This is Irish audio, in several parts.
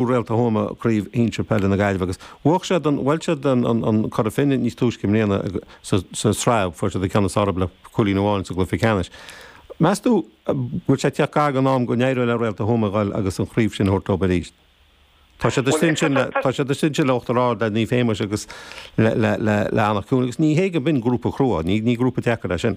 Réalta Thuama Craobh Shinsir Peile na Gaillimhe agus bhuadh siad an bhuail siad an an Cora Finne níos túisce i mbliana sa sa sraith fuair siad an ceann is fearr orthu le cúilín amháin sa gcluiche ceannais. Meas tú an bhfuil sé ag teacht gar don am go n-éireoidh le Réalta Thuama a ghoil agus an chraobh sin a thabhairt leob arís? Tá siad istigh ansin le tá siad istigh ansin le Uachtar Ard le Naomh Séamus agus le le le le Anach Cuain agus ní hé go b'in grúpa crua, ní ní grúpa deacair é sin.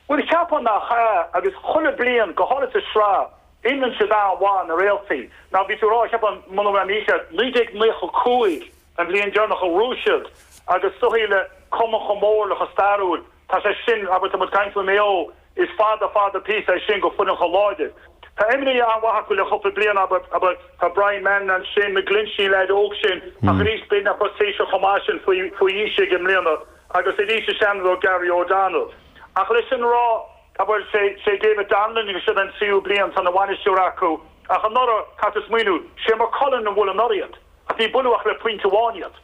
Bhuel, cheapfá nach ea, agus chuile bliain, go háirid sa sraith, imrionn siad an-mhaith, na réaltaí. Mar bhí tú a rá, cheapfá, muna bhfuil mé mícheart, 1995 an bhliain deireanach a ghnóthaigh siad, agus is dóigh le cumann chomh mór le chomh stairiúil, tá sé sin, abair, tá muid ag caint faoi Maigh Eo, is fada, fada píosa é sin go foireann chomh láidir. Tá imreoirí an-mhaith acu le cúpla bliain, abair, abair, tá Brian Mannion ansin, McGlinchey, leaid óg sin, ach arís, beidh na Corsairsigh chomh maith sin faoi aois aige i mbliana. Agus arís is seanrogha Gary O'Donnell. Ach leis sin a rá, bhuel, sé David Donnellan agus seod é an tríú bliain tá ina bhainisteoir acu. Ach anuraidh, caithfidh tú smaoineamh, sé Maigh Cuilinn a bhuail anuraidh iad. Ach ní buaileadh ach le pointe amháin iad.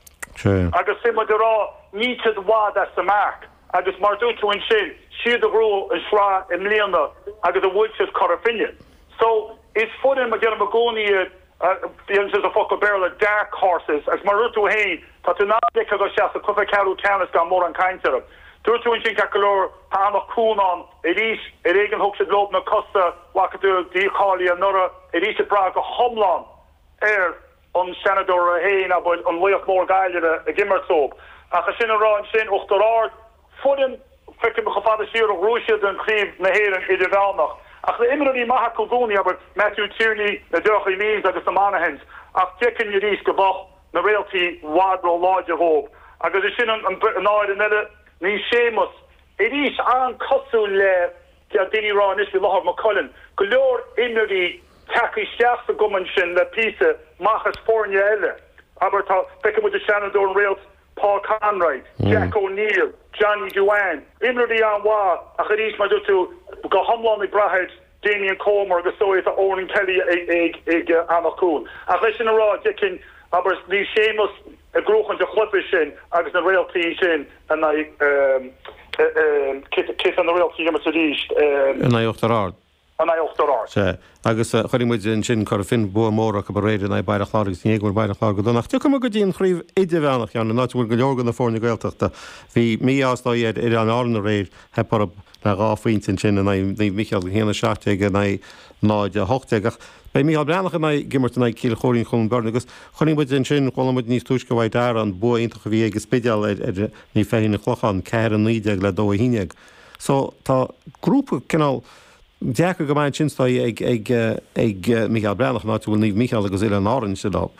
Agus sin muid ag rá, níl siad i bhfad as an marc. Agus mar dúirt tú ansin, siad a ghnóthaigh an sraith i mbliana agus a bhuail siad Cora Finne. So, is foireann, mar déarfainn i gcónaí iad, Bíonn sé sa focal Béarla dark horses agus mar a dúirt tú féin tá tú in ann ligean dó seasamh cluiche ceathrú ceannais gan mórán caint orthu. Dúirt tú ansin ceart go leor, tá Anach Cuain ann arís, ar éigean thug siad leob na cosa bhfaca tú dícháiliú anuraidh, arís ag brath go hiomlán ar an Seanadóir féin, abair, an laoch mór Gaillimhe ag imirt dóib. Ach ansin an raibh ansin Uachtar Ard? Foireann, feicim chomh fada siar a ghnóthaigh siad an Chraobh na hÉireann Idirmheánach. Ach na himreoirí maithe acu i gcónaí abair Matthew Tierney, na deartháireachaí Lees agus na Monaghan's ach d'fheicfinn arís go mbeadh na réaltaí i bhfad ró-láidir dhóib. Agus ansin an fhoireann eile Naomh Séamus arís an-chosúil le deir daoine rá anois faoi láthair, Maigh Cuilinn. Go leor imreoirí ag teacht isteach sa gcumann sin le píosa amach as foirne eile abair tá feiceann muid an Seanadóir, an Réalt, Paul Conroy, Jack O'Neill, Johnny Duane, imreoirí an-mhaith ach arís mar dúirt tú go hiomlán ag brath ar Damien Comer agus is dóigh tá Eoghan Kelly ag Anach Cuain. Ach leis sin a rá, d'fheicfinn, abair, Naomh Séamus ag gnóthachan an chluiche sin agus na réaltaí sin in aghaidh, cé atá na réaltaí ag imirt arís? in aghaidh Uachtar Ard. Uachtar Ard. Sea, agus chuirfidh muid ansin, Cora Finne bua mór acu aréir in aghaidh Baile Chláir agus ní hé go bhfuil Baile Chláir go dona ach tiocfaidh muid go dtí an Chraobh Idirmheánach, Sheáin, an áit a bhfuil go leor de na foirne Gaeltachta. Bhí mí-ádh is dóigh ar Oileáin Árann aréir, theip orthu le dhá phointe ansin in aghaidh Naomh Micheál, 1, 17 in aghaidh 0, 18, ach beidh Micheál Breathnach ag imirt in aghaidh Chill Choirín-Chluain Bheirn agus chuirfidh muid ansin, chuala muid níos túisce ó Mhac Dara an bua iontach a bhí ag an Spidéal ar Naomh Feichín-An Clochán, 4, 19 le 2, 11. So, tá grúpa cineál deacair go maith ansin is dóigh ag, ag, ag Mícheál Breathnach, an áit a bhfuil Naomh Mícheál agus Oileáin Árann istigh leob.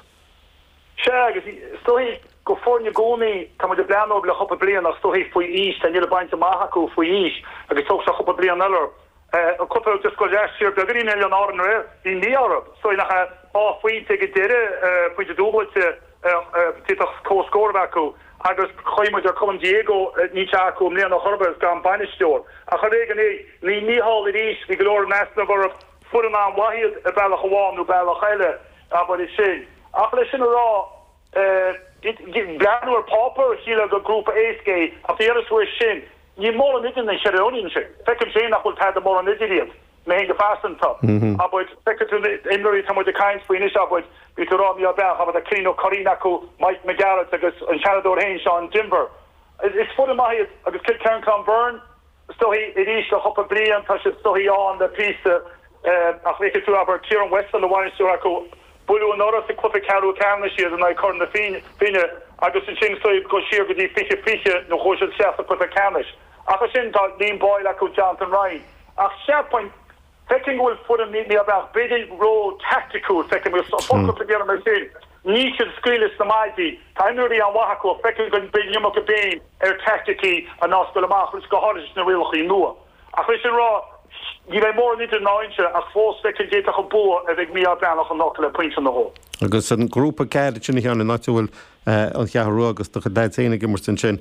Sea, agus is dóigh gur foirne i gcónaí, tá muid ag breathnú orthu le cúpla bliain ach is dóigh faoi aois, tá, níl ag baint amach acu faoi aois agus tógfaidh sé cúpla bliain eile orthu. Eh, cúpla, just go last year, beagáinín Oileáin Árann aréir, bhí mí-ádh orthu, is dóigh nach é, dhá phointe ag an deireadh, eh, pointe dúbailte, D'fhéadfadh comhscór a bheith acu agus chaill muid ar Colm Diego, níl sé acu i mbliana chor ar bith agus gan bainisteoir. Ach ar éigean é. Naomh Mícheál arís. Bhí go leor in easnamh orthu. Foireann an-mhaith iad ar bhealach amháin nó bealach eile, abair é sin. Ach leis sin a rá, breathnú ar pháipéar, shílfeá gur grúpa éasca é ach bhí amhras uaidh sin. Níl mórán idir na himreoirí ansin. Feicimse féin nach bhfuil tada mórán idir iad. Mé go pearsanta, abair, feicfidh tú na himreoirí atá muid ag caint faoi anois, abair, bhí tú ag rá Mícheál Breathnach, abair, Cillian Ó Curraoin acu, Mike Mac Gearailt agus an Seanadóir féin, Seán Denvir. Is foireann maith iad agus Cill Choirín Cluain Bheirn istigh arís le cúpla bliain, tá siad istigh ann le píosa ach feicfidh tú, abair, Ciaran Weston, ina bhainisteoir acu, buaileadh anuraidh sa cluiche ceathrú ceannais iad in aghaidh Chora Finne agus ansin go siar go dtí fiche fiche nuair a chuaigh siad isteach sa cluiche ceannais. Ach ansin tá Liam Boyle acu, Jonathan Ryan. Ach cheapfainn, feicim go bhfuil foireann níos fearr ach b'fhéidir róthaicticiúil, feicim agus an focal a deirim ar sin, níl siad ag scaoileadh leis na maidí. Tá imreoirí an-mhaith acu ach feicim go mbeidh an iomarca béim ar taicticí ná oscailt amach agus go háirithe sna rialacha nua. Ach leis sin a rá, ní bheidh mórán idir ná inse ach fós feicim d'fhéadfadh an bua a bheith ag Mícheál Breathnach anocht le pointe nó dhó. Agus an grúpa deiridh sin a Sheáin, an áit a bhfuil an Cheathrú Rua agus do chuid leaids féin ag imirt ansin,